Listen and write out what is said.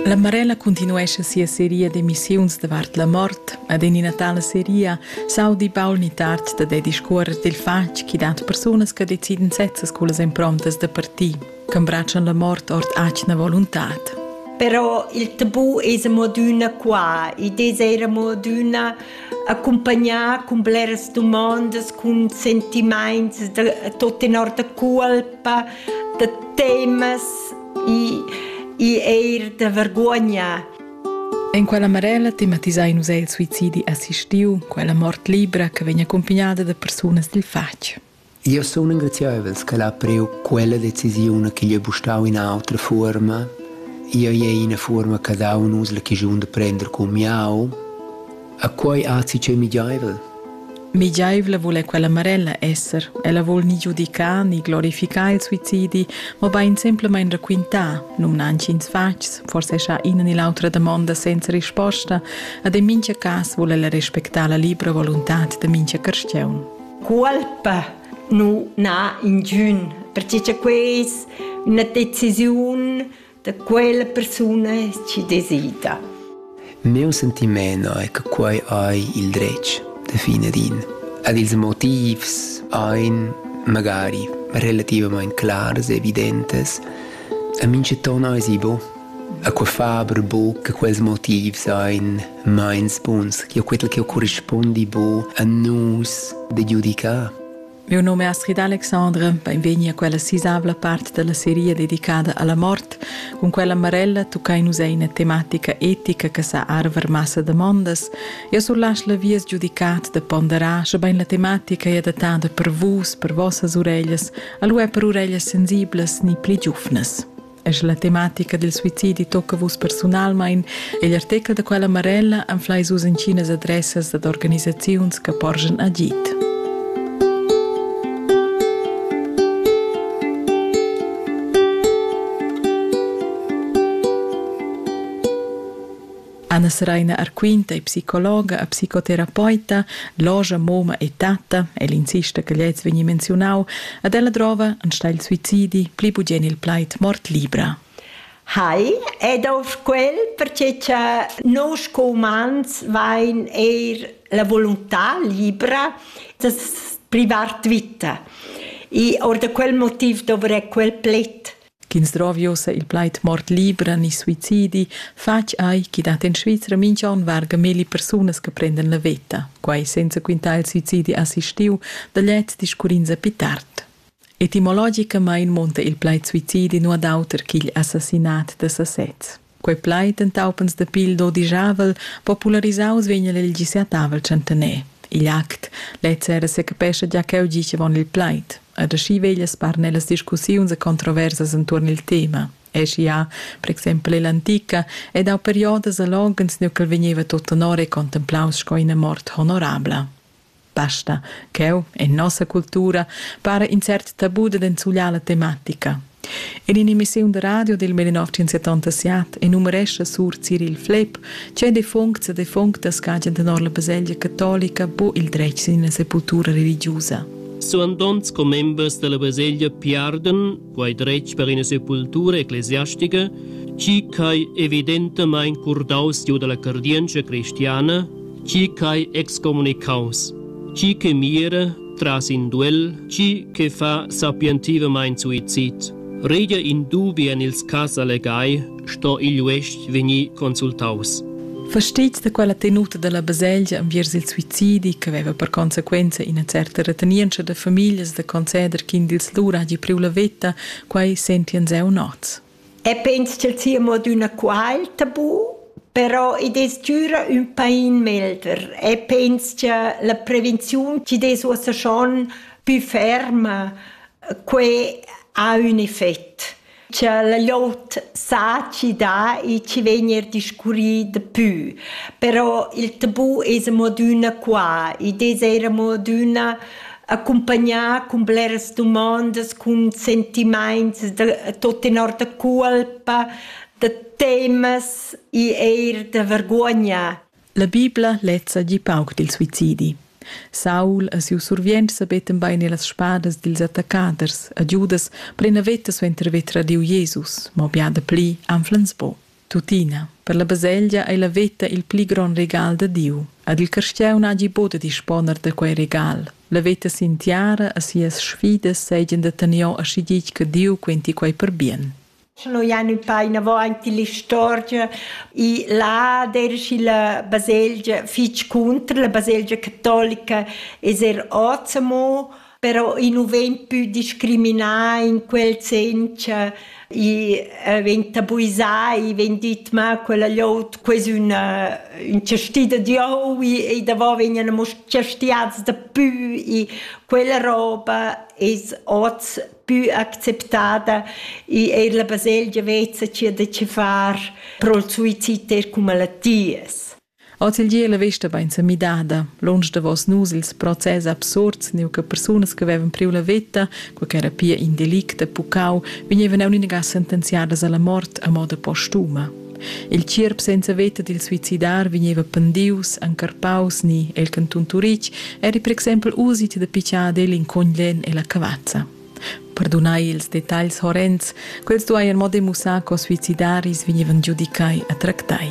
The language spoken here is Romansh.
La Marella cuntinuescha sia seria d'emissiuns davart la mort ed en ina tala seria s'audi Paul Nittart da da discuorrer dil fatg chi dat persunas che deciden sezzas cullas improntas da parti, ch'embratschan la mort ord atgna voluntad. Però il tabù es amo adüna qua. Id es eir amo adüna accompagnà cun bleras dumondas, cun sentimaints da tot tenor da colpa, da temas e, e eir da vergogna. En quella Marella tematisain nus el suicidi assistiu, quella mort libra che vegn accompagnata da persunas dil fatg. Io sun engraziaivels che l'ha priu quella decisione che gli è bustau in altra forma. Io è una forma che dau nus la chigiun de prender con miau. A quei azi ch'ei migiaivel? Migiaivla vul è quella Marella esser. Ella vul ni giudicar ni glorificar il suicidi, mobein semplamein raquintar, numna antschins fatgs, forse scha ina ni l'autra damonda senza risposta, ad en mincha cas vul ella respectar la libra voluntad da mincha carstiaun. Colpa nu n'ha ingün, perche cha queis üna decisiun da quella persuna chi desida. Meu sentiment è che quei ei il dretg da fine din. Ad ils motivs ein magari relativamente clars e evidentes, a minceton ei si bo. A quei faber bo che quels motivs ein meins buns, che quel che corrispondi bo a nus de giudicare. Miu num è Astrid Alexandre, beinvegni a quella sisavla part dalla seria dedicada alla mort. Cun quella Marella tuccai nus ei ina tematica etica che sa arver massa damondas. Eu surlasch la vias giudicat da ponderar, schebein la tematica è adattada per vus, per vossas ureglias, alu è per ureglias sensiblas ni pli giufnas. Es la tematica del suicidi tocca vus personalmein egl artechel da quella Marella anfleis vus inchinas adressas dad organisaziuns che porgen agit. Anna Seraina Arquinta è psicologa e psicoterapeuta, logia, moma e tatta, el insista che gliez vegni menziunau, ed ella drova enstagl suicidi pli bugien il plaid mort libra. Hai, ed auf quel, perché cha nus co umans vain eir la volontà libra das privart vita. I or da quel motiv dovrei quel pled. Ch'ins drovi ussa il plaid mort libra ni suicidi, fatg ei ch'i dat en Svizra mintg'onn varga milli persunas che prendan la veta, quai senza quintar il suicidi assistiu da gliez discurrins a pi tard. Etimologicamain munta il plaid suicidi nu ad auter ch'igl assassinat da sasez. Quei plaid entaupens da pil dodijavel popularisaus vegn el gisiatavel centener. Igl act lez era secapescha gia cheu gicevon il plaid, ed aschi veglia sparner las discussiuns e controversas entuorn il tema. Eschi ha, per exempel ell'antica, ed au periodas a loghens nu ch'el vegneva tot tenor e contemplaus sco ina mort honorabla. Basta, cheu, en nossa cultura, para in cert tabu da enzugliar la tematica. In in'emissiun da radio del 1977 enumerescha sur Cyril Flepp, che defuncts e defunctas cagen tenor la baselgia catolica bo il dretg sin la sepultura religiusa. Suandonts commembers della baselgia piarden quai dretg per ina sepultura ecclesiastica, chi ch'ai evidentamain curdaus giu dalla cardientscha cristiana, chi ch'ai excomunicaus, chi che mira tras in duel, chi che fa sapientivamain suicid. Regia in dubi en ils cas allegai sto igl uestg vegnir consultaus. Fastitgs da quella tenuta dalla baselgia enviers il suicidi che veva per consequenza ina certa retenientscha da famiglias da conceder ch'in dils lur hagi priu la veta, quei sentien zeu nots. E pens ch'el sia mo d'una qual tabu, però i des gira un pain melder e pens che la prevenziun ci des uossa schon più ferma, que ha un effett. cha la glot saci dà e chi vegn eir discurrì dapü. Però il tabù es amo adüna qua. Id es eir amo adüna accumpagnà cun bleras dumandas, cun sentimaints da tot tenor da culpa, da temas e eir da vergogna. La Bibla lezza gi pauc dil suicidi. Saul e siu survient sabetten bein ir las spadas dils attaccaders a Giudas per ina veta suenter haver tradiu Jesus, mo bia dapli anflens buc. Tuttina, per la baselgia ei la veta il pli gron regal da Diu. Ad il carstieu n'hagi bod da disponer da quei regal. La veta sin tiara e sias sfidas seigien da tener aschi ditg che Diu quenti quei per bien. Sche noi ein ün pa inavò aint ill'istorgia, i là deraschi la baselgia fich cunter, la baselgia catolica es er hoz amo, però i nu vegn pü discriminà in quel sen cha i vegn tabuisà, i vegn dit ma quella llot quo es üna ün chastì da Dieu e davò vegnan amo chastiats dapü, i quella roba es hoz più acceptada e è la baselgia vezza ci da ci far pro il suicid cum malattias. Ozeldie la vesta bain sa midada. Lunsch davos nus ils process absurds, neu che persunas che avevan priu la veta, co che era pia in delict a Pucau, vegnevan aunc inaga sentenziadas alla mort a moda postuma. Il tgierp senza veta dil suicidar vegneva pendius, encarpaus ni el cantun Turitg eri per exempel usit da pitschar egl in cogn lenn ella cavazza. Perdunai ils detagls horrends, quels dueien mo demussar co suicidaris vegnevan giudicai a tractai.